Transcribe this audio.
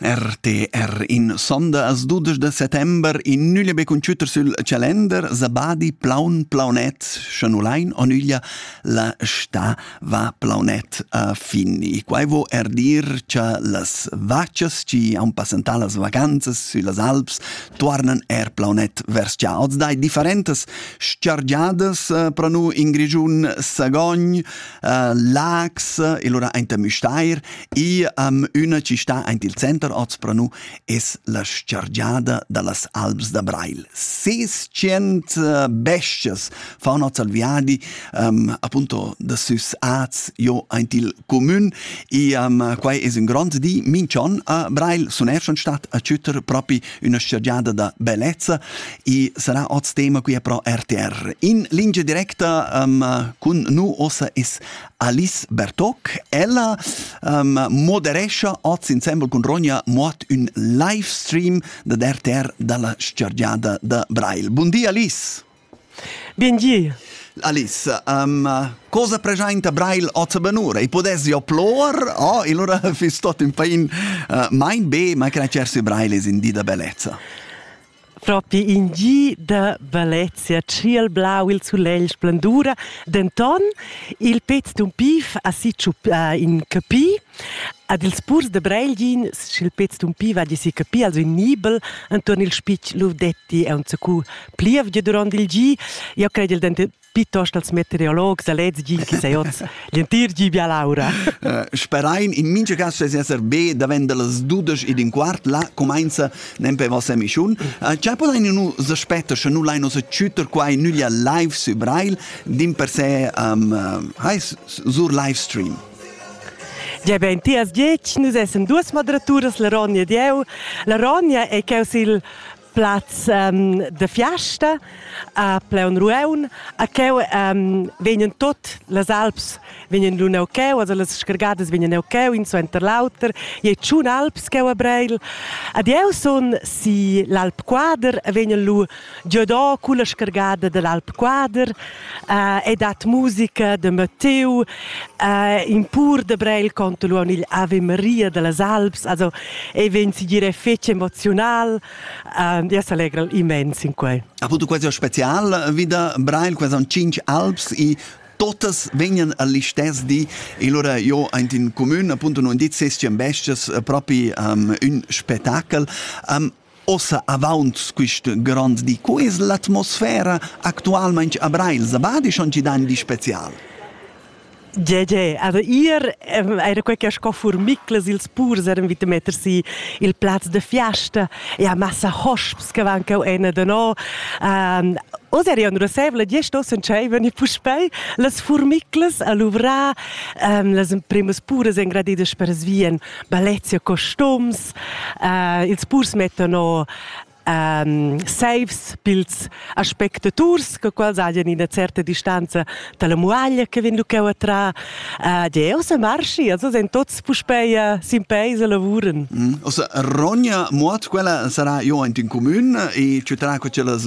RTR in sonda as dudesch da settember in nüglia be cun chütter sül calender Sabadi plaun plaunet scha nu lain o nüglia la sta va plaunet a fin e quai vo er dir cha las vachas chi haun passantà las vacanzas süllas Alps tuarnan er plaunet vers già oz dai differentas s-chargiadas eh, pro nu in Grischun Sagogn uh, Lags, e lura aint da Müstair, e um, üna chi sta aint il center Ozpranu es la scergiada da las Alps da Brail. 600 uh, bestas fan hoz al viadi, um, appunto da süs Arts jo aint il comün, e um, quai es ün grond di. Minchon a Brail sun er schon stat a chütter propi üna stüdgiada da bellezza e sarà hoz tema qui pro RTR. In lingia directa um, cun nu ossa es Alice Bertoc. Ella um, moderescha hoz insembel cun Ronja Mott ün live stream da RTR dalla stüdgiada da Brail. Bun di Alice! Biengier. Alice, um, cosa presenta Braille ota benura? I podessi oplor? Oh, ilura fiss tot in pain uh, mein be, ma cracersi Braille is in di da bellezza. Propi in gi da bellezia ciel blau il sulegl splendura, denton il pez d'un pif ha si in capi Ad ils purs da Breilgin sch'il pez tumpiva di si capir als ün nibel entuorn il spitg Ludetti e unzacu plievgia durant il gi. Io cred il dentet piuttost als meteorologs da lez gi chi sai hoz l'entir gi bia l'aura. Sperain in mincha cas sez esser be davent da las dudesch ed in quart là cumainza nempe vossa emischiun. Cha podain nu s'aspetter sche nu lain us chütter quai nüglia live sü Brail, dimpersè um, uh, hai sur live stream. Gia bein tias diec, nus essan duas moderaturas, la Ronja ed jeu. La Ronja ei cheu sil plaz um, da fiasta a Pleun Rueun, a cheu um, vegnan tot las alps vegnan lu neu cheu, also las scargadas vegnan neu cheu, in suenter l'auter, je tschun alps cheu a Breil. Ad jeu sun si l'Alp Quader, vegnan lu già da culla scargada dall'Alp Quader eh, e dat musica de Matteo eh, in pur de Breil conto luon il Ave Maria dellas Alps, also e ven si dire fece emozional, eh, ja s'allegra immens in quei. Ha avuto quasi special wieder Breil, quasi an cinc Alps i totas vegnan all'istess di e allora io int in comune appunto non dit ses bestias propi um, un spettacol um, Ossa avaunt quist grond di, co es l'atmosfera actualmaing a Breil? Zavadi schon chi dan di special? Gie, gie, aber ihr era quei che sco furmiclas ils purs eran vita metter si il plaz de fiesta e a massa hosps che van cau ena da no. Um, Oz eri un rosevole die stossen tscheiven e puspei las furmiclas a luvrar um, las imprimas puras engradiedas per svien balezia costums, Ils purs mettan o ehm saivs pils aspectaturs co quels hajan ina certa distanza dalla muaglia che vegn lu cheu a trar. Jeu semarschi, els ein tots puspei sin peis e lavuran. Ossa rogna muot quella sarà jo aint in comün e tü tra co tschellas